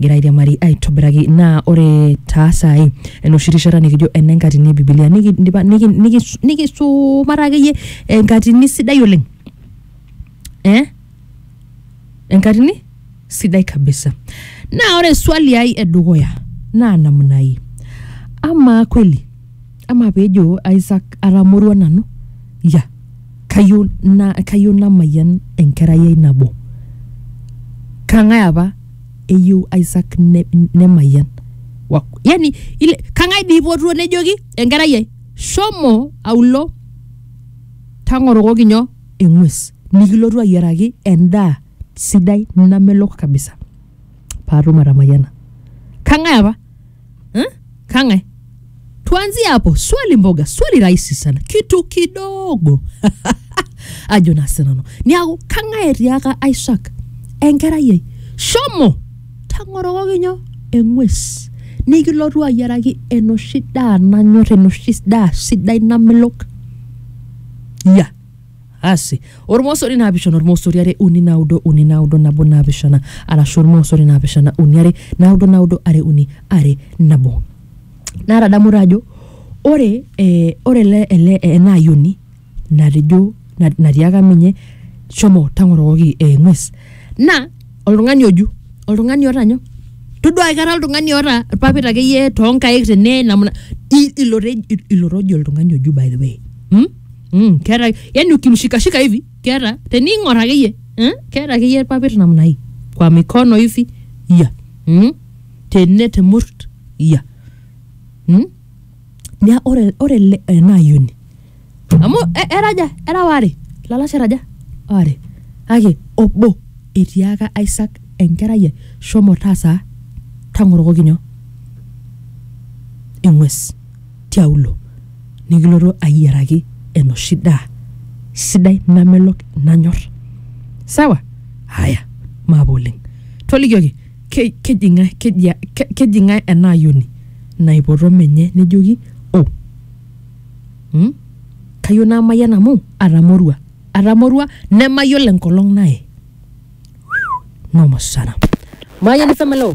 egira airiamari aitobiraki naa ore taa saai enoshi rishata nikijo ene nkatini e bibilia nikidipa niki- niki- nikisumata akeyie enkatini sidai oleng eh? enkatini sidai kabisa naa ore swali ai edukuya naa namna hii amaa kweli ama pejo Isaac atamorua nanu ya kayieu na kayieu namayian enkerai ai nabo kang'ae apa eyieu Isaac ne, nemayian Wa- yani ile kang'ae dii ipotuo nejoki enkerai ai shomo aulo tang'orokoki nyoo eng'ues nikilotu ayiaraki endaa sidai namelok kabisa paatum atamayiana kang'ae apa eh? kang'ae tuanzie hapo swali mboga swali rahisi sana kitu kidogo ajo naa sinanu niaku kang'ae etiaka isaac enkerai ai shomo tang'orokoki nyoo eng'ues nikilotu ayiaraki enoshi daa nanyor enoshi daa sidai namelok ya asi ormosori naapishana ormosori are uni naudo uni naudo nabo naapishana arashu ormosori naapishana uni are naudo naudo are uni are nabo naatadamu taa ajo ore eh, ore ele ele ena ayioni natejo na- natiaka menye shomo tang'orokoki eh, ng'ues naa oltung'ani oju oltung'ani oota nyoo todua aikata oltung'ani oota irpapit akeyie toonkaik tene namna i- ilo te- ilo tojo oltung'ani oju by the way hmm? Mm, keeta yani ukimshikashika hivi keeta tening'or akeyie eh, keeta akeyie irpapit namna hii kwa mikono hivi ya mm, tene temurt ya mm. Nia ore ore ele ena ayioni amu e- era aja era waare lalashera aja waare kake obo etiaka Isaac enkerai ai shomo taasa tang'orokoki nyoo eng'ues tiaulo nikilotu ayiaraki enoshi daa sidai namelok nanyor sawa haya maape oleng tolikioki ke, keji ng'ae keji, a- ke, keji ng'ae ena ayioni naipoto menye nejoki o hmm? kayieu namayian amu atamorua atamorua nemayiolo enkolong naye noma sana mayiani femeleo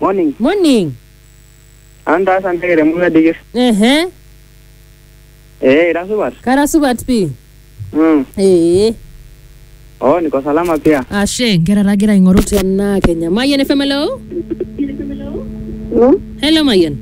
Morning. Morning. Antaas anteke te murua dikir. Ehe. Eh, ira supat? Kara supat pii. Mm. Ee. Oh, niko salama pia. Ashe, nkera tagira aing'oru tena Kenya. Mayian FM, hello? Hello, Mayian.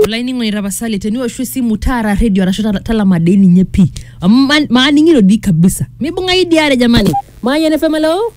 olainining'oni tapasali teniwoshu esimu taara redio arashu ta- talama dei ninye pii amu ma- maaning'ito dii kabisa mibung'ai diare jamani mayian FM, hello?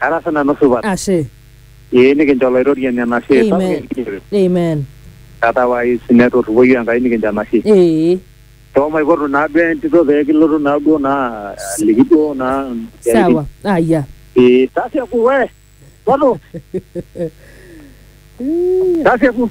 Ara sii nanu supat. Ashe. Ee nikincho Olaitoriani enashe sapuk Amen. enkijiape. Amen. Otherwise netorripoyie Enkai nikincho enashe. Ee. Too maipotu naa duo entito pee kilotu naa duo naa aliki duo naa isiaitin. Sawa. Aya. Ee tasieku we. Potu. Ii. Tasieku.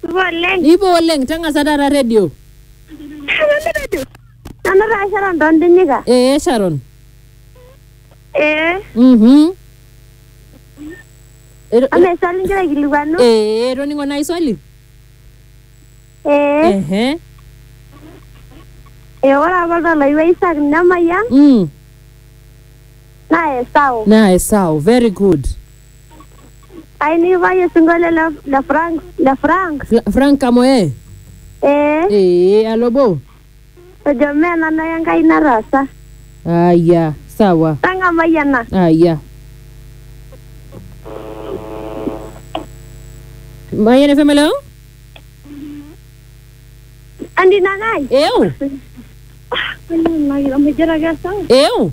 Supa oleng. Nipo oleng, tang'asa taata redio. Nanu taa Sharon Tondinyika. Ee Sharon. Ee. Mhm. Ero- Ama eswali igira aikilikuanu? Ee, etoning'o nai swali? Ee. Ehe. Ee ore apa oltau loiwa Isak nemayian Mm. naa Esau. Naa Esau, very good. Ainivaye sinkolio le le Frank le Frank. Fra- frank kamoe Eh, ee alobo ejo mee nanu ake Enkai nataasa. aya sawa Tang'amai ena. aya mayian fm hello Andi Nanai. eu Amu ijo ake sawa. eu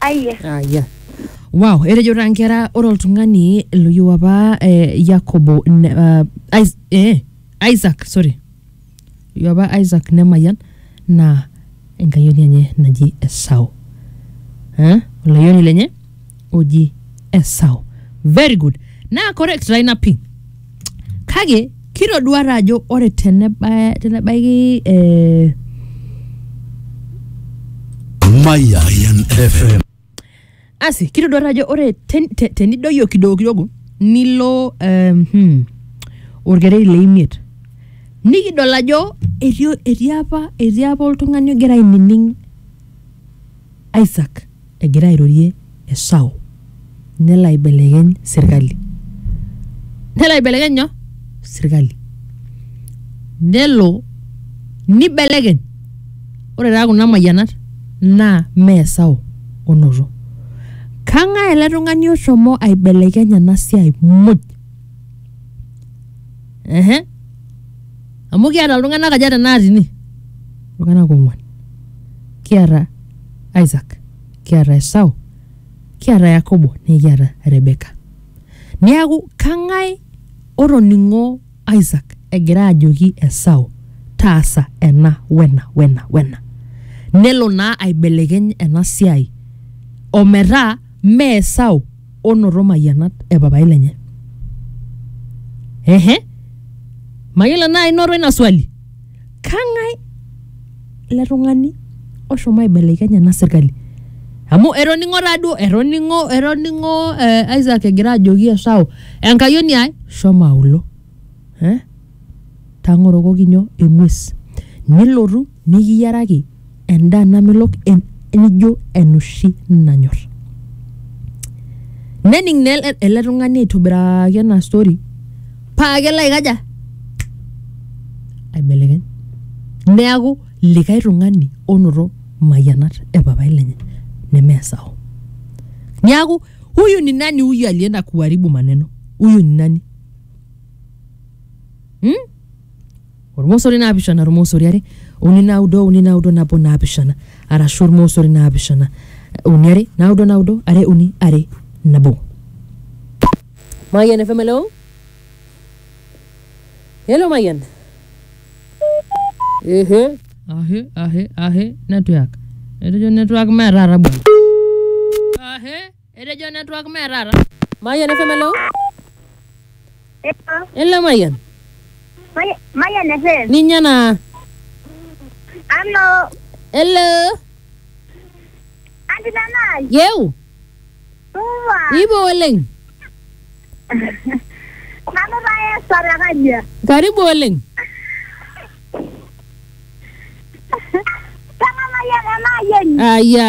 Aiye. Aya. Wow, etejo taa nkera ore oltung'ani loyieu apa eh, Yakobo ne, ah, Is- eh, Isaac, sorry. Loyieu apa Isaac nemayian naa enkayioni enye naji Esau. Eh? Olayioni lenye oji Esau. Very good. Naa correct taa ina pii. Kake kitoduata ajo ore tenebaya tenebaiki eh, Mayan FM. asi kitoduata ajo ore ten- te- tenidoyio kidogo kidogo nilo eh, hmm, orkereri le imiet nikidol ajo etii etii apa etii apa oltung'ani ogira ainining Isaac Egira airorie Esau nelo aibelekeny sirkali. Nelo aibelekeny nyoo? Sirkali. Nelo nibelekeny. Ore taa kuna mayianat naa mee Esau onoto. Kang'ae ele tung'ani oshomo aibelekeny ena siai muj? Ehe. Amu kiata iltung'anak aja tenakata ine? Iltung'anak ong'wan. Kiata Isak, kiata Esau, kiata Yakobo nikiata Rebeka. Neaku kang'ae otoning'o Isak egira ajoki Esau taasa ena wena wena wena. Nelo naa aibelekeny ena siai ometaa mee Esau onoto mayianat e papai lenye. Ehe, mayiolo enaa inoto ina swali. kang'ae ele tung'ani oshomo aibelekeny ena sirkali amu etoning'o taaduo etoning'o etoning'o eh, Isaac egira ajoki Esau enkayioni ai shomo aulo eh? tang'orokoki nyoo eng'ues nilotu nikiyiaraki endaa namelok en- nijo enoshi nanyor nening naa ele- ele tung'ani aitobiraki ena story paa kelo aikaja aibelekeny neaku likae tung'ani onoto mayianat e papai lenye nemeesao niaku huyu ni nani huyu alienda kuharibu maneno huyu ni nani hmm? Olmosori naapishana olmosori are uni naudo uni naudo nabo naapishana arashu olmosori naapishana uni are naudo naudo are uni are nabo. Mayian FM hello. Hello Mayian. Ehe. Ahe ahe ahe network. Etejo network mee taata bwana. Ahe. Etejo network mee taata. Mayian FM hello. Hello Mayian. Mayian FM. Ninye naa. Hello. Hello. Anti Nanai. Yeu. Supa. Ipo oleng. Nanu taa Esther te Kajia. Karibu oleng. Kang'amayie ena ayieni. Aya.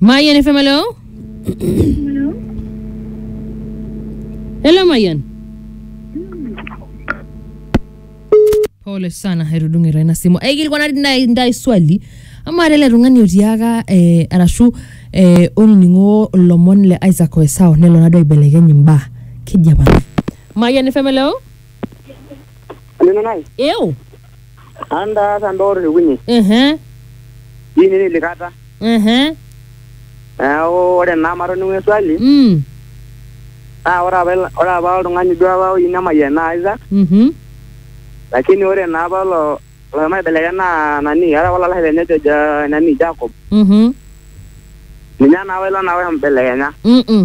Mayan FM, hello? Hello, Mayan. pole sana hairudung'ira ina simu aikilikuwa nati ndai ndai swali ama lele tung'ani otiaka eh, arashu eh, olning'o lomon le isaac oesao nelo nado aibelekeny imbaa keji apa mayian ifemeleo Neno nai. eu Antaasa ndoor irkunyai Mhm. dini nilikata. Mhm. Neaku ore naa matoning'o eswali Mm. naa ore apa ilo- ore apa oltung'ani duo apa oyieu nemayian naa Isaac Mhm. lakini ore naa apa ilo loshomo aibelekenya naa nani eeta apa olalashare lenye ojo Ja- nani Jacob Mhm. ninye naa apa ilo naa oibelekenya. Mm-mm.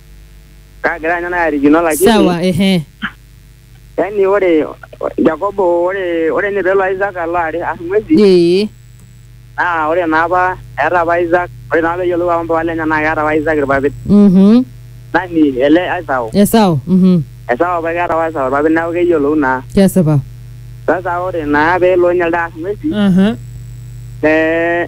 kaagira anya naarikino lakini sawa ehe yani ore Jakobo ore ore ninye peelo Isaac alo are arr ng'uesi ee naa ore naa apa eeta apa Isaac ore naa peyiolou apa mpapa lenye naa keeta apa Isaac irpapit mhm nani ele Esau esau mhm Esau apa keeta apa Esau irpapit neeku keyiolou naa kesipa sasa ore naa peelo ninye elde arr ng'uesi aha eh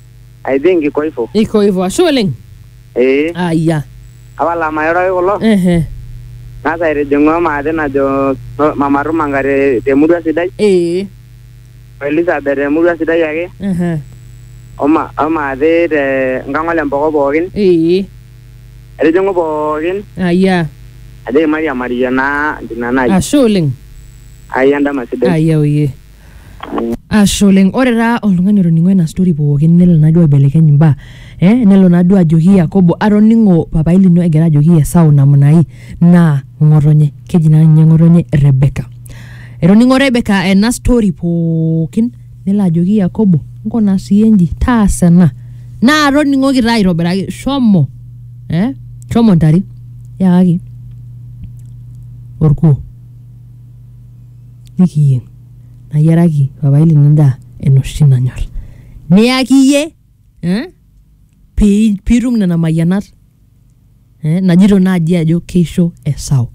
I think iko hivyo. iko hivyo ashe oleng Eh, aya apa lamayoroki kulo. ehe Nasa etijing'ua maate najo no- Mama Rumanga te- temurua sidai, ee o Elizabeth temurua sidai ake, ehe o ma- o maate te Nkang'ol Empoko pookin. ee Etijing'u pookin, aya ajoki mairiamarie naa ntina nai. ashe oleng Ai endama sidai. aya oye Ashe oleng. Ore taa oltung'ani otoning'o ena story pookin nelo naa duo aibelekeny imbaa eh nelo naa duo ajoki Yakobo atoning'o papaai lino egira ajoki Esau namna hii naa ng'otonye. Keji naa ninye ng'otonye Rebecca. Etoning'o Rebecca ena story pookin nelo ajoki Yakobo nkuna siyie nji, taasa ena naa toning'oki taa aitobiraki shomo eh shomo intare yakaki orkuo. nikiyieng nayiaraki papai lino endaa enoshi nanyor niyaki iyie eh, pi- piitum nena mayianat eh, najito naaji ajo keisho Esau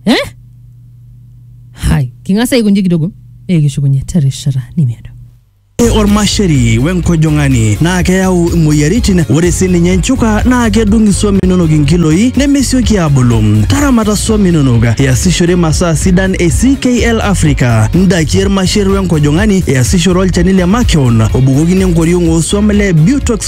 eh? hai king'as aikonji kidogo nikishukunye terishata nimiado Ore ormasheri we nkojong'ani naa keyau imoyiaritin. Ore sii ninye nchuka naa kedung isuam inonok inkiloi nemesioki aabulu. Taramata suam inonok iasishore masaa sidan e CKL Africa, ndaiki e rmasher we nkojong'ani, iasishore olchani le makeon obukokini enkoriong oo suam le Butox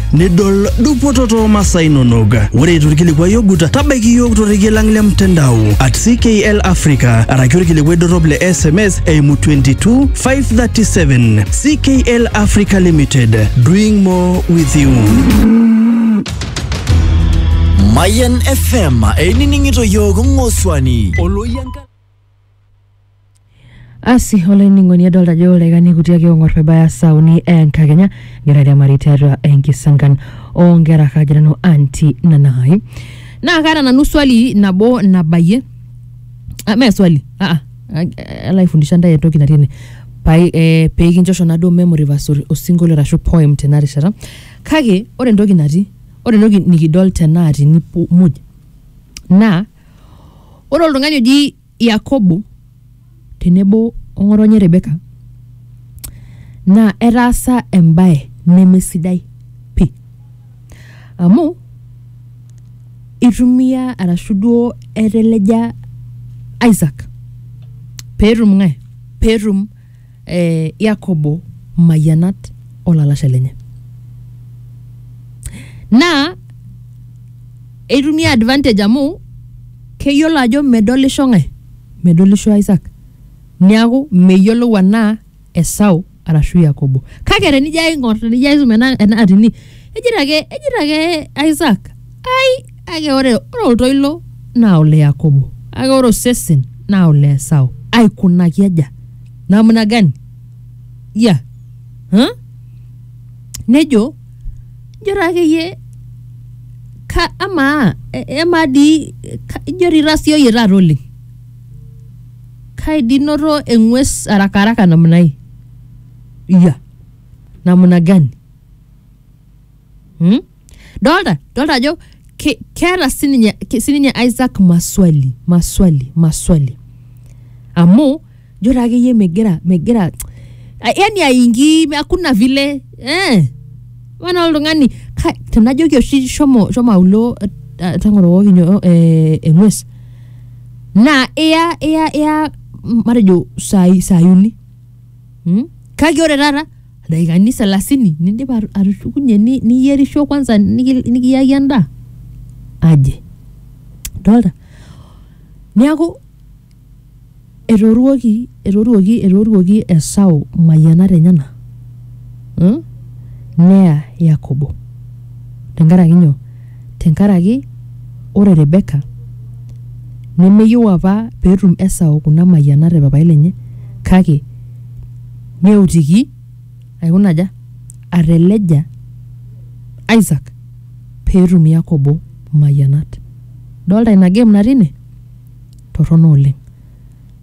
nidol dupoto too masaa inonok. Ore torkilikuai ogut, tabaiki iyiook torrekie lang le mtandao at CKL Africa araki orkilikuai dorrop le SMS eimu 22537. CKL Africa Limited, doing more with you. Mayan FM einining'ito yiook ng'osuani. asi olainining'oni adolta ajo ilaikani kuti ake ong'or pebaya saa uni enkakenya egira airiamari tiatua enkisankan onkera kajo nanu anti nanai naa kaata nanu swali nabo nabayie ah, mee swali ah, ah, eh, alo aifundisha ntae entoki natii ene pai eh, pekinchosho naduo memory verse or- osinkolio arashu poem tena rishata kake ore entoki natii ore entoki nikidol tenaatini pu- muj naa Ore oltung'ani oji Yakobo tenebo o ng'otonye Rebeka naa etaasa embae nemesidai pii. Amu itumia arashu duo eteleja Isaac peetum ng'ae, peetum eh, yakobo mayianat olalashe lenye naa eitumia advantage amu keyiolo ajo medolisho ng'ae medolisho isak niaku meyiolou anaa esau arashu yakobo kake tenijo aing'or tenijo aisum ena ena atini ejito ake ejito ake isak ai Kake ore, ore oltoilo naa ole Yakobo, kake ore osesen naa ole Esau. Aikunaki aja? Namna gani? Ya. Huh? Nejo, ijo taa akeyie ka amaa e- emaa dii ka- ijo dii itasioyie taata oleng. Kai dii noto eng'ues haraka haraka namna hii? Ya. Namna gani? Hmm? Dolta, dolta ajo ke- keeta sininye ke- sininye Isaac maswali, maswali, maswali. Amu jo taa akeyie megira megira a- yani aingi hakuna vile eh wana oltung'ani ka- tenajoki oshi shomo shomo aulo eh, eh, tang'oro wokinyo eh, eng'ues naa iya iya iya matejo saai saai uni Mm? kake ore taata daikani selasini nindip atu- atushukunye ni- niyierisho kwanza niki- nikiyaki endaa aje dolta neeku etooruoki etooruoki etooruoki esau mayianat enyena mm? neya yakobo tenkaraki nyoo tenkaraki ore Rebeka nemeyieu apa peetum Esau kuna mayianat e papai lenye kake neutiki aikuna aja? ateleja Isaac peetum Yakobo mayianat. Idolta ina game natii ine? Torrono oleng.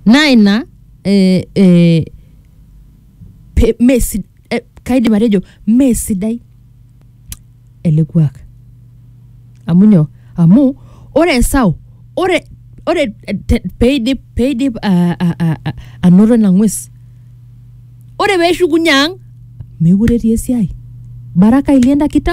Naa ina eh, eh, pe, mesi, eh, kaidim atejo mesidai ele kuak amu nyoo amu ore Esau ore ore te- peidip peidip a- a- a- a- anoto ina ng'ues ore peeshukunye ang mekure etii esiai baraka ilienda kita